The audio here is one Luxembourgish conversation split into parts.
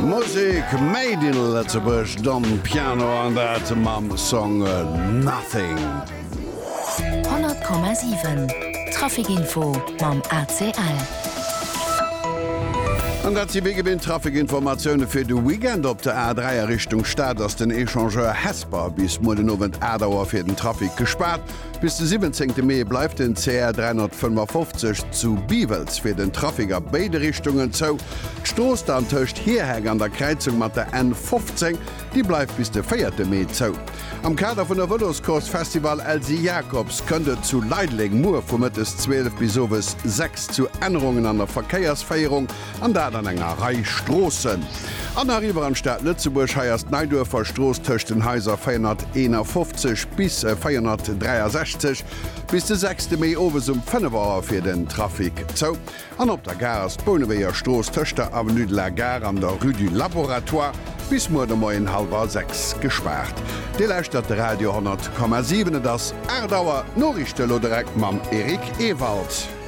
Musek made in Lëtzebuerg, Don Piano an dat mam Song Nothing. 100,7 Traficinfo mam ACL. An dat si wéi gewinnt Traficinformatioune fir de Weekend. Op der A3 a Richtung Stad ass den Echangeur Hesper bis muer den Owend 8 Auer fir den Trafic gespaart. Bis de 17 Mee bleift den CR 355 zu Biwels fir den Trafic a béide Richtungen zou. D'Strooss dann tëscht Hierheng an der Kräizung mat der N 15, déi bleift bis de 4 Mee zou. Am Kader vun der Vëloscourse Festival Elsy Jacobs kënnt et zu Leideleng muer vu mëttes 12 bis owes 6 zu Ännerungen an der Verkéiersféierung. An dat an enger Rei Stroossen. An nach iwwer an d'Stad Lëtzebuerg. Hei ass d'Neiduerfer Strooss tëscht den Haiser 451 bis 463 bis de sechste Mee owes um 5 Auer fir den Trafic zou. An op der Gare ass d'Bouneweger Strooss tëscht der Avenue de la Gare an der Rue du Laboratoire bis muer de Moien hallwer 6 gespaart. Dir lauschtert de Radio 10,7. Et ass 8 Auer. D'Noriichte elo direkt mam Eric Ewald.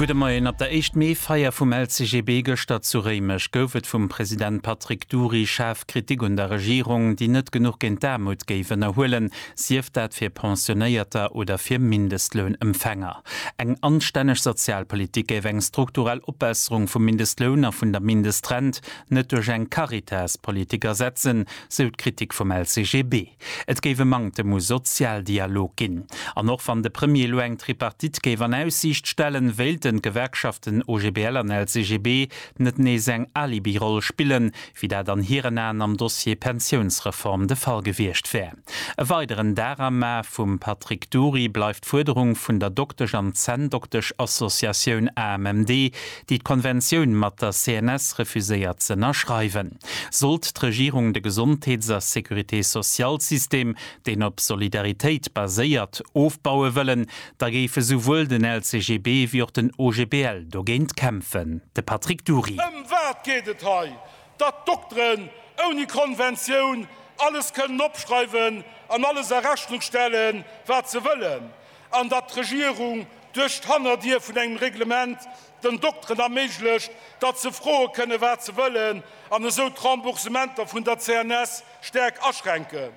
Gudde Moien. Op der Éischt Mee Feier vum LCGB gëschter zu Réimech gouf et vum President Patrick Dury schaarf Kritik un der Regierung, déi net genuch géint d'Aarmut géif ënnerhuelen, sief dat fir Pensionéierter oder fir Mindestlounempfänger. Eng anstänneg Sozialpolitik géif eng strukturell Opbesserung vum Mindestloun a vun der Mindestrent net duerch eng Caritas-Politik ersetzen, sou d'Kritik vum LCGB. Et géif e Manktem u Sozialdialog ginn. An och wann de Premier elo eng Tripartite géif an Aussiicht stellen, wéilten d'Gewerkschaften OGBL an LCGB net nees eng Alibiroll spillen, wéi dat an hiren Aen am Dossier Pensiounsreform de Fall gewiescht wär. E weideren Darama vum Patrick Dury bleift d'Fuerderung vun der Doktesch an Zänndoktesch-Associatioun AMMD, déi d'Konventioun mat der CNS refuséiert z'ënnerschreiwen. Sollt d'Regierung de Gesondheets a Sécurité-sociale-System, deen op Solidaritéit baséiert, ofbaue wëllen, da géife souwuel den LCGB wéi och den OGBL dogéint kämpfen. De Patrick Dury. Ëm wat geet et hei? Datt d'Dokteren ouni Konventioun alles kënnen opschreiwen an alles a Rechnung stellen, wat se wëllen? an datt d'Regierung duerch d'Hannerdier vun engem Reglement den Dokteren erméiglecht, datt se froe kënne wat se wëllen an esou d'Remboursementer vun der CNS staark aschränken.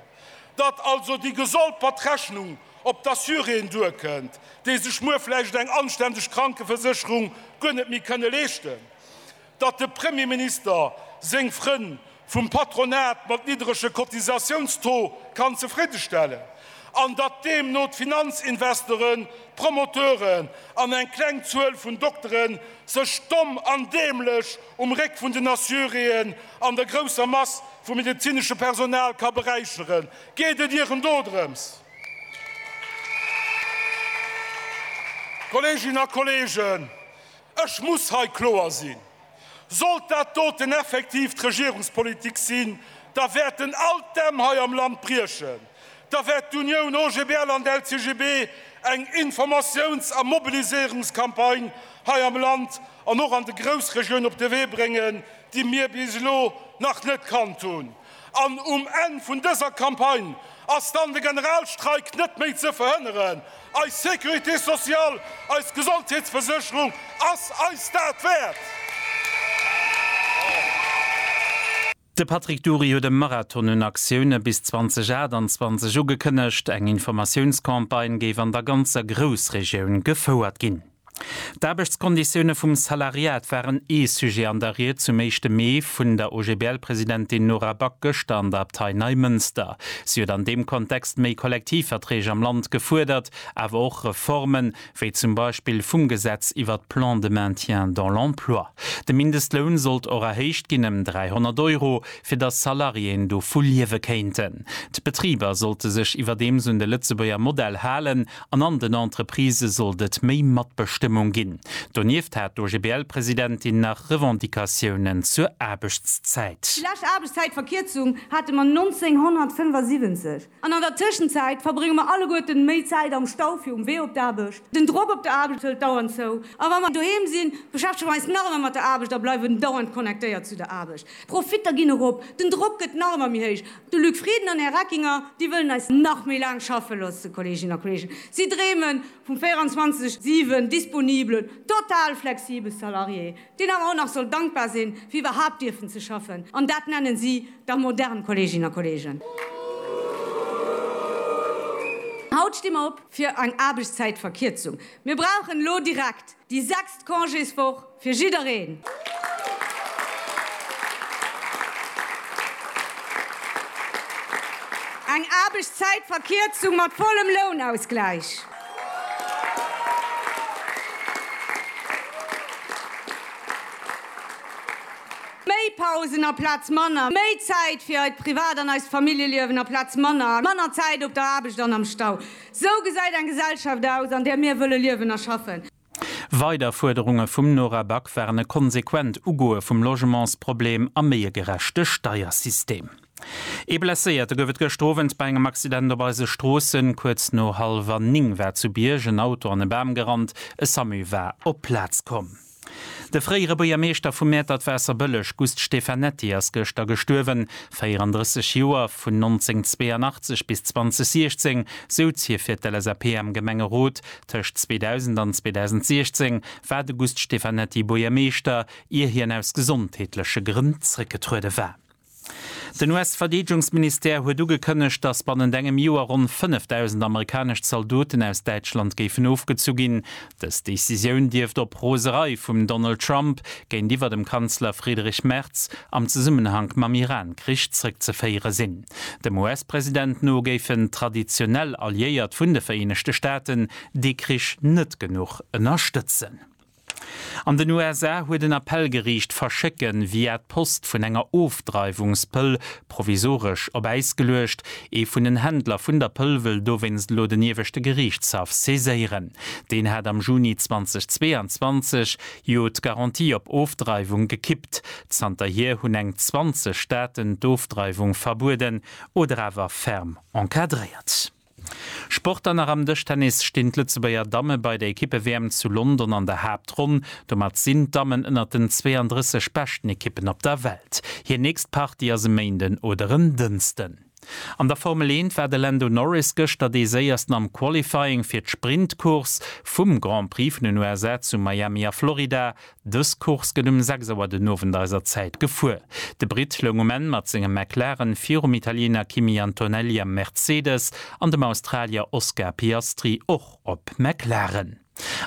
Datt also déi gestolpert Rechnung op d'Assuréen duerkënnt, déi sech muer vläicht eng anständeg Krankeversécherung guer net méi kënne leeschten. datt de Premier Minister seng Frënn vum Patronat mat niddrege Cotisatiounstaux kann zefridde stellen an datt deemno d'Finanzinvestoren, d'Promoteuren an eng kleng Zuel vun Doktere sech domm an däämlech um Réck vun den Assuréen an der grousser Mass vum medezinesche Personal ka beräicheren. Geet et Iech en dodrëms, Kolleeginnen a Kolleegen, Ech muss hei kloer sinn, Sollt dat doten effektiv d'Regierungspolitik sinn, da wäert en alt Dämm hei am Land briechen, da wäert d'Unioun OGBL an d'LCGB eng Informatiouns a Mobiliséierungscampagne hei am Land an och an de Groussregioun op de Wee bréngen, déi mir bis elo nach net kannt hunn. An um Enn vun dëser Campagne ass dann de Generalstreik net méi ze verhënneren. Eis Sécurité sociale, eis Gesondheetsversécherung ass eis dat wäert! De Patrick Dury huet e Marathon un Aktioune bis 2028 ugekënnegt. Eng Informatiounscampagne géif an der ganzer Groussregioun gefouert ginn. D'Aarbechtskonditioune vum Salariat waren ee Sujet an der Ried zum éischte Mee vun der OGBL-Presidentin Nora Back gëschter an der Abtei Neimënster. Si huet an deem Kontext méi Kollektivverträg am Land gefuerdert, awer och Reformen, wéi zum Beispill vum Gesetz iwwer d'Plans de maintien dans l'emploi. De Mindestloun sollt och erhéicht ginn ëm 300 Euro, fir datt Salariéen dovu liewe kéinten. D'Betriber sollte sech iwwerdeems un de Lëtzebuerger Modell halen An an den Entreprisë sollt et méi Matbestëmmung ginn. Donieft hat d'OGBL-Presidentin nach Revendicatiounen zur Aarbechtszäit. Déi lescht Aarbechtszäitverkierzung hate mer 1975, an an der Tëschenzäit verbrénge mer alleguerten méi Zäit am Stau fir um Wee op d'Aarbecht. Den Drock op der Aarbecht hëlt dauernd zou, a wa mer doheem sinn, beschäftege mer eis nach ëmmer mat der Aarbecht a bleiwen dauernd connectéiert zu der Aarbecht. D'Profitter ginn erop, den Drock gëtt nach ëmmer méi héich. De Luc Frieden an Här Reckinger, déi wëllen eis nach méi laang schaffe loosse, Kolleeginnen a Kolleegen. Si dreeme vum 24, 7 disponibelen, total flexibele Salarié, deen awer och nach soll dankbar sinn, fir iwwerhaapt dierfen ze schaffen. An dat nennen si da modern, Kolleeginnen a Kolleegen! Haut sti mer op fir eng Aarbechtszäitverkierzung. Mir brauchen elo direkt Déi sechst Congéswoch fir jiddereen! Eng Aarbechtszäitverkierzung mat vollem Lounausgläich! Méi Pausen aplaz manner! Méi Zäit fir eist Privat an eist Familljeliewen aplaz manner, manner Zäit op der Aarbecht an am Stau! Sou gesäit eng Gesellschaft aus, an där mir wëlle liewen a schaffen. Weider Fuerderunge vum Nora Back waren e konsequent Ugoe vum Logementsproblem a méi e gerechte Steiersystem. Ee Blesséierte gouf et gëschter Owend bei engem Accident op eise Stroossen. Kuerz no hallwer 9 war zu Bierg en Auto an e Bam gerannt. E Samu war op d'Plaz komm. De fréiere Buergermeeschter vu Mäertert-Waasserbëlleg Gust Stefanetti ass gëschter gestuerwen, 34 Joer. Vun 1982 bis 2016 souz hie fir d'LSAP am Gemengerot. Tëscht 2000 an 2016 war de Gust Stefanetti Buergermeeschter, ier hien aus gesondheetleche Grënn zréckgetruede war. Den US-Verdeedegungsministère huet ugekënnegt, datt bannent engem Joer ronn 5.000 amerikanesch Zaldoten aus Däitschland géifen ofgezu ginn. Dës Decisioun dierft op Roserei vum Donald Trump géintiwwer dem Kanzler Friedrich Merz am Zesummenhank mam Iran-Krich zrëckzeféiere sinn. Dem US-President no géifen traditionell Alliéiert vun de Vereenegte Staaten dee Krich net genuch ënnerstëtzen. An den USA huet en Appellgeriicht d'Verschécke via d'Post vun enger Ofdreiwungspëll provisoresch op Äis geluecht. Ee vun den Händler vun der Pëll wëll dowéinst elo den ieweschte Geriichtshaff saiséieren. Deen hat am Juni 2022 jo d'Garantie op Ofdreiwung gekippt. Zanterhier hunn eng 20 Staaten d'Ofdreiwung verbueden oder awer ferm encadréiert. Sport an nach am Dëschtennis stinn d'Lëtzebuerger Damme bei der Ekippe-WM zu London an der Haaptronn. Domat sinn d'Dammen ënnert den 32 beschten Ekippen op der Welt. Hir nächst Partie ass e Méinden oder en Dënsten. An der Formel Eent war de Lando Norris gëschter dee Séiersten am Qualifying fir d'Sprint-Course vum Grand Prix vun den USA zu Miami a Florida. Dës Course gëtt um 6 Auer den Owend eiser Zäit gefuer. De Britt loung um Enn mat sengem McLaren virum Italiener Kimi Antonelli am Mercedes an dem Australier Oscar Piastri och op McLaren.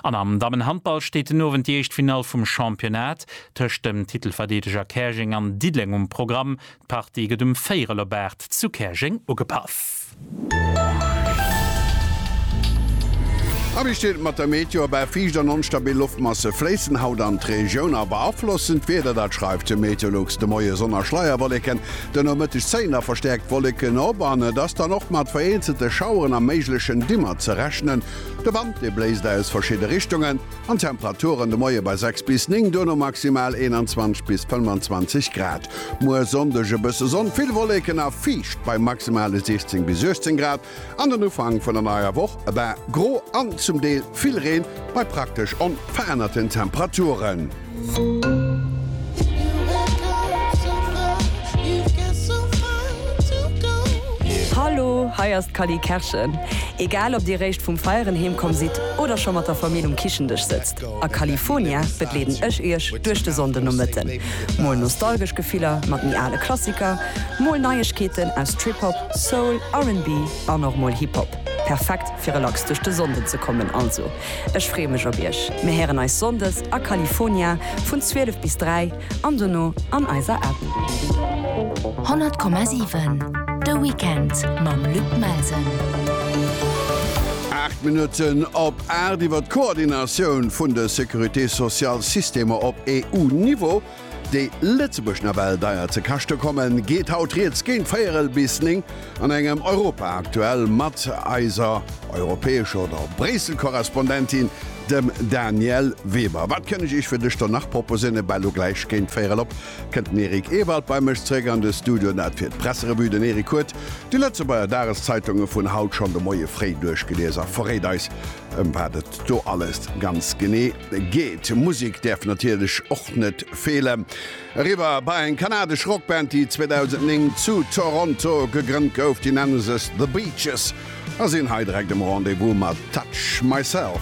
An am Dammenhandball steet den Owend déi éischt Finall vum Championnat tëscht dem Titelverdeedeger Käerjeng an Diddeleng um Programm. D'Party gëtt um Véierel op 8 zu Käerjeng ugepaff. Abistëll mat der Meteo, Bal fiicht an onstabil Loftmasse fléissen haut an d'Regioun a beaflossen d'Wieder. Dat schreift de Meteolux de Moie. Sonn a Schleierwolleken, de Nomëtteg zéien da verstäerkt Wolleken op an et ass dann och mat vereenzelte Schaueren a méiglechen Dimmer ze rechnen. De Wand, dee bléist aus verschidde Richtungen an d'Temperaturen de Moie bei 6 bis 9, duerno maximal 21 bis 25 Grad. Muer Sonndeg e bësse Sonn, vill Wolleken a fiicht bei maximale 16 bis 18 Grad. An den Ufank vun der neier Woch e bal gro an zum Deel vill Reen bei praktesch onverännerten Temperaturen. Hallo, hei ass d'Cally Kerschen. Egal ob dir réischt vum Feieren heemkomm sidd oder scho mat der Famill um Kichendësch sëtzt, A California begleeden ech iech duerch de Sonndenomëtten. Mol nostalgesch Gefiller mat méi ale Klassiker, mol Neiegkeeten aus Trip-Hop, Soul, RnB an och mol Hip-Hop. Perfekt fir relax duerch de Sonnden ze kommen. Also ech freeë mech op iech. Mir héieren eis Sonndes a California vun 12 bis 3 an dono an eiser App. 100,7 De Weekend mam Luc Melsen. Aacht Minutten op Aart iwwer d'Koordinatioun vun de Sécurité-sociale-Systemer op EU-Niveau, déi Lëtzebuerg nawell deier ze kaschte kommen, geet haut riets géint véierel bis néng an engem Europa Aktuell mat eiser europäescher oder Bréissel-Korrespondentin, dem Danièle Weber. Wat kënn ech Iech fir dës Stonn nach proposéieren? Ebal elo gläich géint véierel op Kënnt den Eric Ewald bei mech zeréck an de Studio, dat fir d'Presserevue. Den Eric huet déi Lëtzebuerger Dageszeitunge vun haut schonn de Moie fréi duerchgelies a verréit eis, ëm wat et do alles ganz genee geet. Musek däerf natierlech och net feelen. Eriwwer bei eng kanadesch Rockband, déi 2009 zu Toronto gegrënnt gouf. Déi nenne sech The Beaches a sinn hei direkt um Rendez-vous mat Touch Myself.